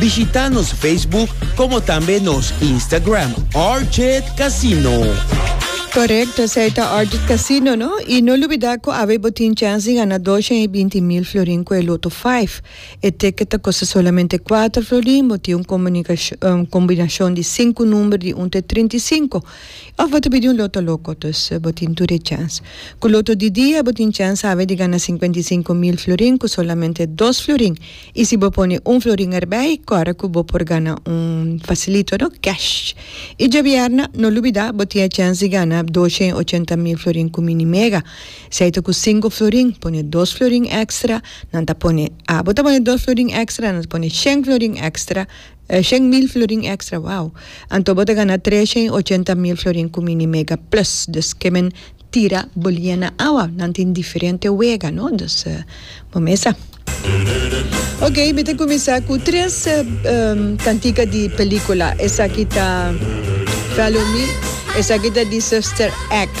Bishita nos Facebook como tambe nos Instagram Orchid Casino. Correcto, esey ta Orchid Casino no. Y no lubida cu awe bo tin chance di gana dosha y binti mil florin cu e Lotto Five. E ticket ta costa solamente cuater florin, bo tin un comunicacion, combinacion di cinco number di un te trinta y cinco. Of bo ta bidi un Lotto Loco, dus bo tin tur e chance. Cu Lotto di dia bo tin chance awe di gana cincuenta y cinco mil florin cu solamente dos florin. Y si bo pone un florin erbey cora cu bo por gana un facilito no, cash. Y djabièrna, no lubida bo tin e chens di gana doce y ochenta mil florin cu Mini Mega. Si ay ta cu cinco florin, pone dos florin extra, nan ta pone, ah, bo ta pone dos florin extra, nan ta pone shen florin extra, eh, shen mil florin extra, wow. Anto bo ta gana trece y ochenta mil florin cu Mini Mega plus. Dus ke men. tira bolia na awa nan tin diferente wega no dus bo mesa. Ok mi ta kuminsá ku tres kantika di pelikula esaki ta Follow Me esaki ta di Sister Act.